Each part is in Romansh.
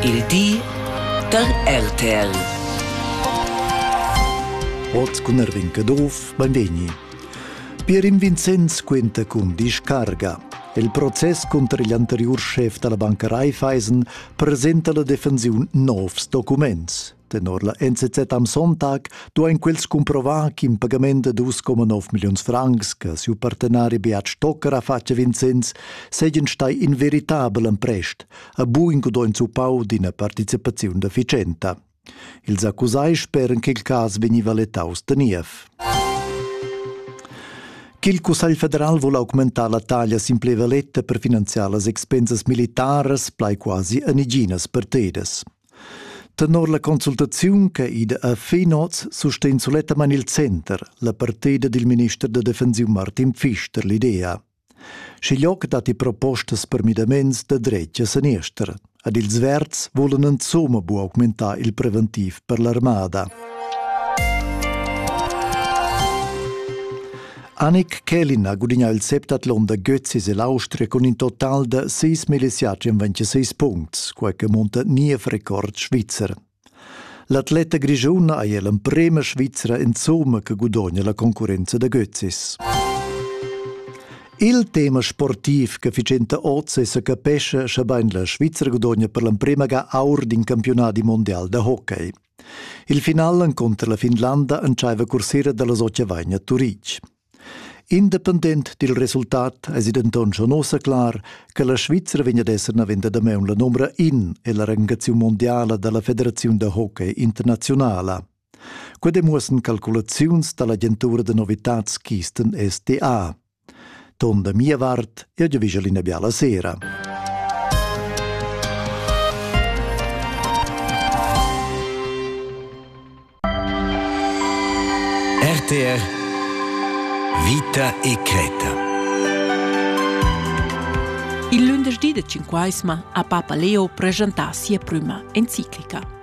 Il di da RTL. Oz cun Erwin Caduff, benvegni. Pierin Vincenz quenta cun discarga. Il process cunter igl anteriur schef dalla banca Raiffeisen presenta la defensiun novs documents. Tenor la NZZ am Sonntag duain quels cumprovar ch'in pagament da 2,9 milliuns francs che siu partenari Beat Stocker ha fatg a Vincenz seigien stai inveritabel emprest, a buin gudogn zuppau d'ina participaziun efficienta. Ils accusai speran ch'il cas vegniva letaus da niev. Ch'il Cussegl federal vul augmentar la taglia simplevaletta per finanziar las expensas militaras plai quasi a neginas partedas. Tenor la consultaziun che ida a Finoz sustegn sulettamain il center la partida dil minister da defensiun Martin Pfister l'idea. Schiglioc datti propostas per midaments da dretg a seniester. Ad ils verds volan insomma bu augmentar il preventiv per l'armada. Annick Kelin ha gudignà il septatlon da Götzis e l'Austria cun in total da sis millisiatgs en 26 puncts, quai che munta niev record svizzer. L'atleta grischuna è l'emprema Svizra insomma che gudogna la concurrenza da Götzis. Il tema sportiv che Ficenta oz sa capesce sche bain la Svizra gudogna per l'emprema ga aur d'in campiunat mondial da hockey. Il final encunter la Finlanda entscheiva cursera dallas Occavagna a Turitg. Independent dil resultat eisi denton schon ussa clar che la Svizra vegn ad esser navenda damaun la numera in ella rangaziun mondiala dalla Federaziun da hockey internazionala. Quei demuossen calculaziuns dall'agentura da novitads Kisten SDA. Ton da mia vart, jeu giavischel ina biala sera. RTR Vita e Creta. Il lunedì de Cinquaisma a Papa Leo presentà sia prima enciclica.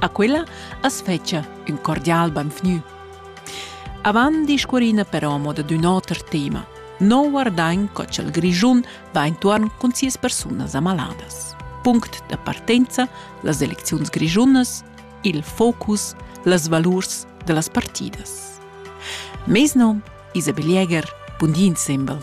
A quella as fetscha ün cordial benvgnü. Avant discurrina però mo dad ün oter tema. No guardain co cha'l Grischun va intuorn cun sias persunas amaladas. Punct da partenza las elecziuns grischunas, il focus, las valurs da las partidas. Mes nom Isabel Jäger, bun di insembel.